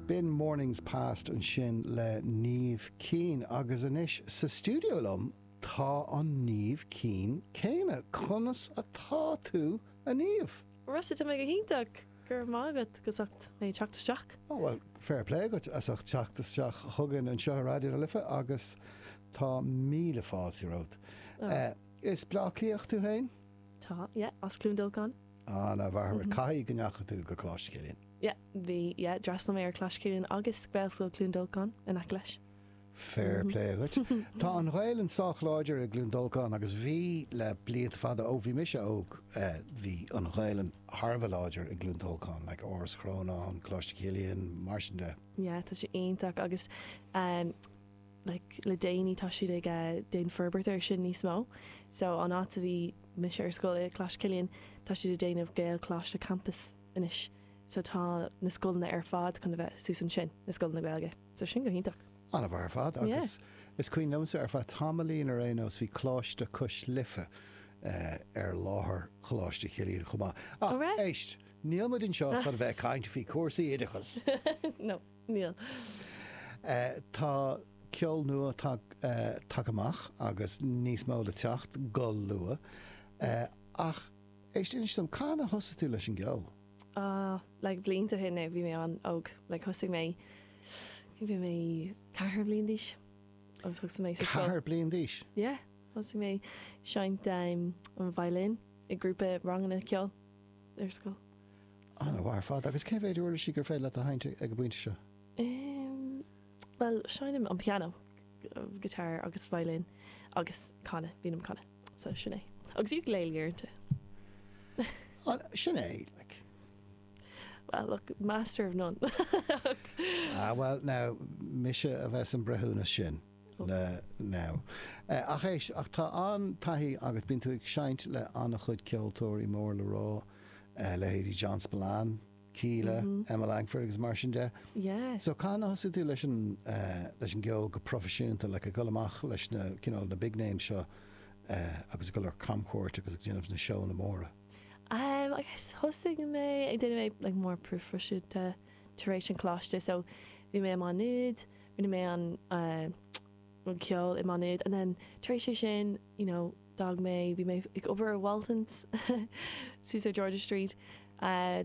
B'in Mornings Past ansin le Niamh Keane agus anois sa stiúideo liom tá an Niamh Keane céanna. Conas atá tú, a Niamh? Rossa, tá mé go hiontach! Go raibh maith agat as ucht mé teacht isteach. Ó bhuel, fair plé agat as ucht teacht isteach chugainn anseo i Raidió na Life agus tá míle fáilte romhat. Is Bleá Cliathach tú féin? Tá, yeah, as Cluain Dolcáin. An-mhaith ar fad. Caithfidh go ndeachaigh tú go Coláiste Chilliain? Yeah, bhí. Yeah, d'fhreastail mé ar Coláiste Chilliain agus Gaelscoil Cluain Dolcáin in aice leis. Fair play dhuit. Tá an Ghaelainn sách láidir i gCluain Dolcáin agus bhí le blianta fada, ó bhí mise óg, bhí an Ghaelainn thar a bheith láidir i gCluain Dolcáin, like Áras Chrónáin, Coláiste Chilliain, mar sin de. Yeah, tá sé iontach agus. like, le déanaí tá siad ag eh, déan forbairt ar sin níos mó. So an áit a bhí mise ar scoil i Coláiste Chillian, tá siad ag déanamh Gaelcholáiste campus anois. So tá na scoileanna ar fad chun a bheith suas ansin, na scoileanna Gaeilge. So sin go hiontach. Ana-mhaith ar fad Yeah. agus is cuimhin liomsa ar feadh tamaillín ar aon nós bhí Coláiste Cois Life eh, ar láthair Choláiste Chillian chomh maith. Ach éist, níl muid anseo chun a bheith ag caint faoi cúrsaí oideachas! No. Tá ceol nua tagtha uait amach agus níos mó le teacht go luath. Ach éist, inis dom, cathain a thosaigh tú leis an gceol? Like blianta ó shin now, bhí mé an-óg. Like thosaigh mé, bhí mé ceathar bliain d'aois agus thosaigh mé sa scoil. Ceathair bliain d'aois? Yeah, thosaigh mé seinnt an violin i grúpa ranganna ceoil. ar scoil. An-mhaith ar fad agus cé mhéid uirlisí gur féidir leat a sheinnt ag an bpointe seo? Bhuel, seinnim an pianó, guitar agus violin agus canadh, bím ag canadh. So, sin é. Agus ukulele uaireanta. An, sin é, like. Well, look, master of none. Ah, well, now, mise a bheith san breithiúnas sin. le now. Ach éist, ach tá an-taithí agat, bíonn tú ag seinnt le an-chuid ceoltóirí mór le rá, leithéidí John Spillane, Kíla, Emma Langford agus mar sin de. Yeah. So cathain a thosaigh tú leis an, leis an gceol go proifisiúnta, like ag dul amach leis na, you know, na big names seo agus ag dul ar camchuairt agus ag déanamh na seóanna móra? Em, I guess thosaigh mé ag déanamh é like more proifisiúnta, tar éis an choláiste so bhí mé i Má Nuad rinne mé an an ceol i Má Nuad and then tar éis é sin you know d'fhág mé bhí mé ag obair i Waltons ar George's Street uh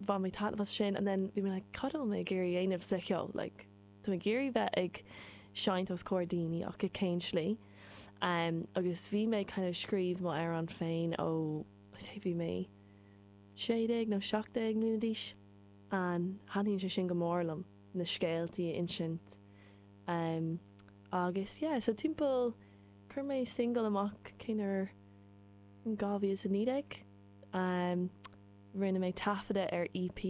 bhain mé taitneamh as sin and then bhí mé like cad atá mé ag iarraidh dhéanamh sa cheol like tá mé ag iarraidh bheith ag seinnt os comhair daoine ach i cén tslí um agus bhí mé kind of scríobh m'amhráin féin ó bhí mé sé déag nó seacht déag mbliana d'aois ann. Taitníonn sé sin go mór liom, na scéaltaí a insint em agus yeah so timpeall, chuir mé singil amach cén uair, in 2019 em rinne mé taifeadadh ar EP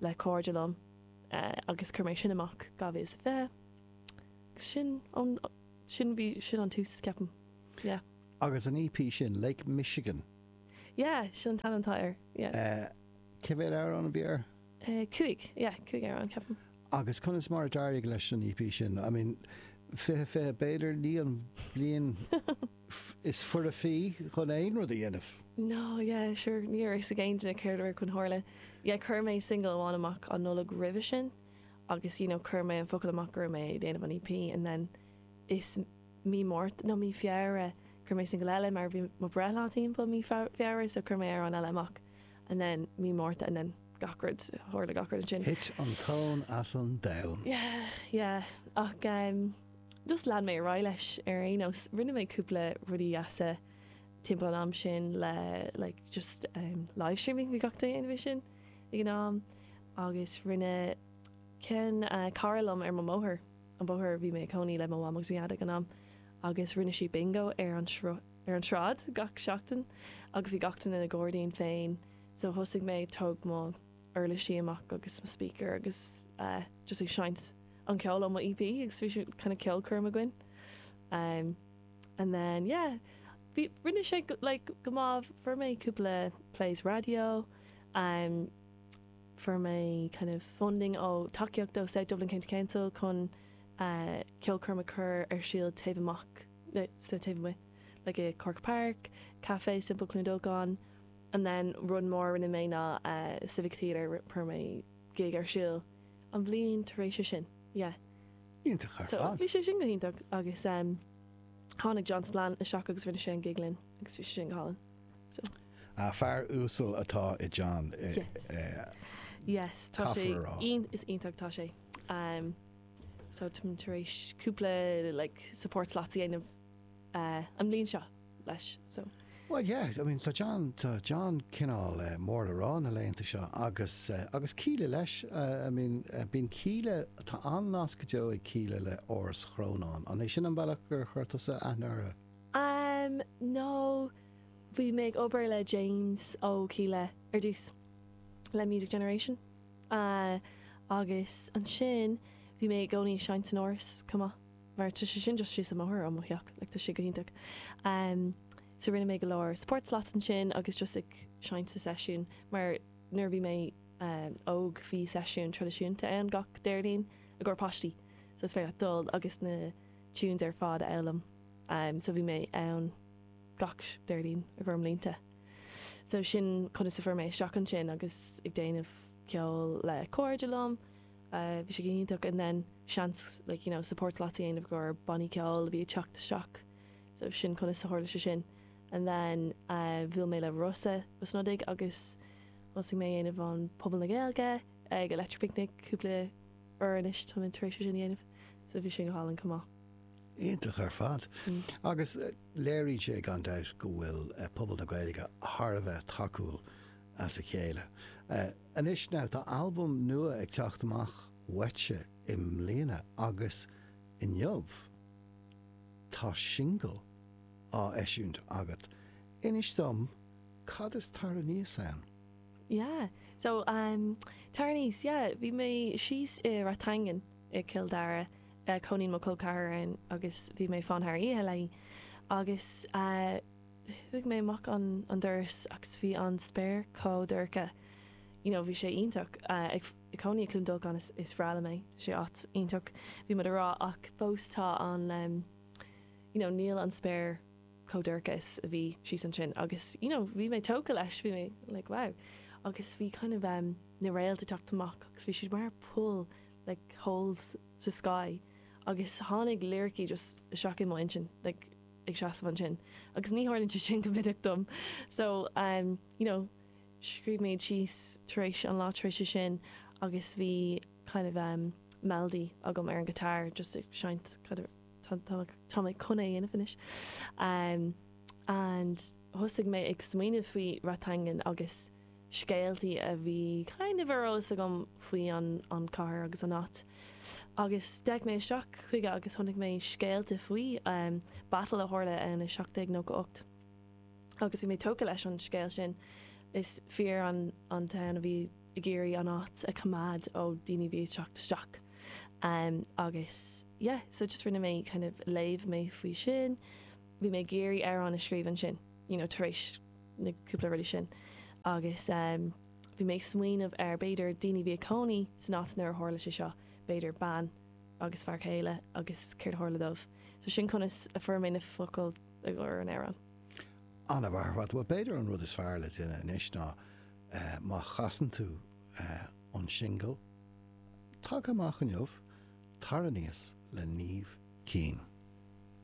le cairde liom eh agus chuir mé sin amach 2020 agus sin ón sin bhí sin an tús ceapaim yeah. Agus an EP sin, Lake Michigan. Yeah, sin an t-ainm atá air, yeah. Eh, cé mhéad amhrán a bhí air? Eh, cúig, yeah, cúig amhrán, ceapaim. Agus conas mar a d'éirigh leis an EP sin? I mean, fiche, fiche, b'fhéidir, ní an bhliain is foirfí chun aon rud a dhéanamh. No, yeah, sure, ní raibh a fhios ag éinne céard a raibh chun tarlú. Yeah, chuir mé single amháin amach an Nollaig roimhe sin agus, you know, chuir mé an focal amach go raibh mé ag déanamh an EP and then mí Márta, nó mí Feabhra, cuir mé single eile mar bhí mo breithlá timpeall mí Feabhra so cuir mé amhrán eile amach and then mí Márta and then gach rud, tharla gach rud ansin. Thit an tóin as an domhan. Yeah, yeah, ach em just lean mé ar aghaidh leis ar aon nós, rinne mé cúpla rudaí dheasa timpeall an am sin le like just em livestreaming bhí gach duine ann sin ag an am agus rinne ceann eh cara liom ar mo bóthar, an bóthar, bhí mé ag cónaí le mo mham agus mo dhaid ag an am, agus rinne siad bingo ar an sruth, ar an sráid gach seachtain, agus bhí gach duine ina gairdín féin, so thosaigh mé, thóg mé mo uirlisí amach agus mo speaker agus eh just ag seinnt an ceol ó mo EP agus bhí sé kind of ceolchoirm againn em and then yeah, bhí, rinne sé like go maith, fuair mé cúpla plays raidió, em. Fuair mé kind of funding ó, tacaíocht ó South Dublin County Council chun ceolchoirm a chur ar siúl taobh amach, no, sa taobh amuigh, like i Corkagh Park, Café Simple Cluain Dolcáin, and then rud mór a rinne mé ná Civic Theatre, fuair mé gig ar siúl an bhliain tar éis sin, yeah. Iontach ar fad. So, bhí sé sin go hiontach agus tháinig John Spillane isteach agus rinne sé an gig linn agus bhí sé sin go hálainn. Fear uasal atá i John, caithfear a rá. Yes iontach, tá sé. So, táim tar éis cúpla like support slots a dhéanamh an bliain seo leis, so. Bhuel, yeah, I mean tá John, tá John cineál mór le rá na laethanta seo agus, agus Kíla leis, I mean bíonn Kíla, tá an-nasc go deo ag Kíla le Áras Chrónáin. An é sin an bealach gur chuir tusa aithne orthu? Am nó bhí mé ag obair le James ó Kíla ar dtús, le Music Generation, agus ansin bhí mé i gcónaí ag seinnt san Áras chomh maith, mar tá sé sin just síos an bóthar ó mo theach, like tá sé go hiontach. So rinne mé go leor support slots ansin agus just ag seinnt sna seisiúin, mar nuair a bhí mé óg bhí seisiún traidisiúnta ann gach Déardaoin i gcomhair páistí, so is féidir leat dul agus na tunes ar fad a fhoghlaim. so bhí mé ann gach Déardaoin i gcomhair mblianta. So sin conas a fuair mé isteach ansin agus ag déanamh ceoil le cairde liom, bhí sé go hiontach and then seans like you know support slots a dhéanamh i gcomhair bannaí ceoil a bhí ag teacht isteach so sin conas a tharla sé sin. And then bhuail mé le Rossa Ó Snodaigh agus thosaigh mé ag déanamh an Puball na Gaeilge ag Electric Picnic cúpla uair anois tá mé tar éis é sin a dhéanamh so bhí sin go hálainn chomh maith. Iontach ar fad. Agus léiríonn sé gan dabht go bhfuil pobal na Gaeilge thar a bheith tacúil as a chéile. Anois now, tá albam nua ag teacht amach uaitse i mbliana agus inniu tá singil á eisiúint agat. Inis dom cad is Tar Aníos ann? Yeah, so, um, Tar Aníos, yeah, bhí mé síos i Rathangan. i gCill Dara a chónaíonn mo col ceathar ann agus bhí mé ag fanacht thar oíche léi agus chuaigh mé amach an doras agus bhí an spéir chomh dorcha you know bhí sé iontach ag cónaí i gCluain Dolcáin is breá liom é is áit iontach bhí muid a rá ach fós tá an you know níl an spéir chomh dorcha is a bhí síos ansin agus you know bhí mé tógtha leis bhí mé like wow agus bhí kind of um, na réalta teacht amach agus bhí siad mar poll like holes sa sky agus tháinig liricí just isteach i mo intinn like ag seasamh ansin agus ní tharlaíonn sé sin go minic dom so um you know scríobh mé iad síos tar éis an lá tar éis sin agus bhí kind of um melody agam ar an guitar just ag seinnt kind of tá mé chun é dhéanamh anois um and thosaigh mé ag smaoineamh faoi Rathangan agus scéaltaí a bhí kind of ar eolas agam faoi an chathair agus an áit. Agus d'fhéach mé isteach chuige agus chonaic mé scéal faoi battle a tharla ann i 1798. Agus bhí mé tógtha leis an scéal sin. Is fir an domhain a bhí ag iarraidh an áit a choimeád ó daoine a bhí ag teacht isteach. Agus yeah, so just rinne mé kind of léamh mé faoi sin. Bhí mé ag iarraidh amhrán a scríobh ansin, you know, tar éis. na cúpla rudaí sin agus bhí mé ag smaoineamh ar b'fhéidir daoine a bhí ag cónaí san áit nuair a tharla sé seo, b'fhéidir bean agus fear céile agus céard a tharla dóibh. So sin conas a fuair mé na focail i gcomhair an amhráin. An-mhaith ar fad, bhuel b'fhéidir an rud is fearr le déanamh anois ná má chasann tú é, an singil tagtha amach inniu, tar aníos le Niamh Keane.